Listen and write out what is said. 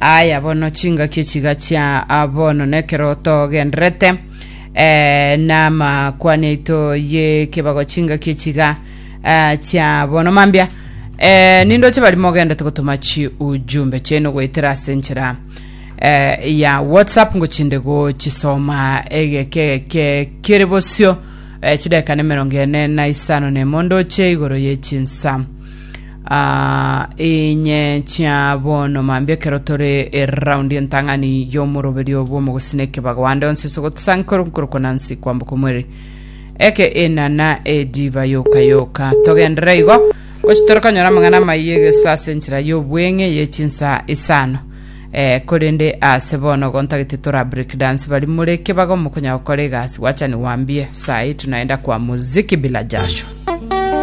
Aya bono chingaki echiga chia bono nekero togenderete eh, namakwani aito yekebago chingaki echiga eh, chia bono mambia eh, nindoche bari mogendete gotuma chi ujumbe chenu goetera ase enchera eh, ya whatsapp ngochinde gochisoma egeke egeke kere bosio eh, chidakika na emerongo ene na isano na emo ndoche igoro ye chinsa Inye chia bono mambia ekero tore eraundi entang'ani y'omoroberio bw'omogusina ekebago ande onsi ase ogotosankora nkorokwa Nancy kwamboka omwere eke enana ediva yoka yoka togendere igo gochi tore konyora amang'ana amaiye egesa ase enchera y'obweng'e ye chinsa isano eh, korende ase bono gontagete tora break dance bari more ekebago mokonyara gokora egasi wachani wambie saa hii tunaenda kwa muziki bila jasho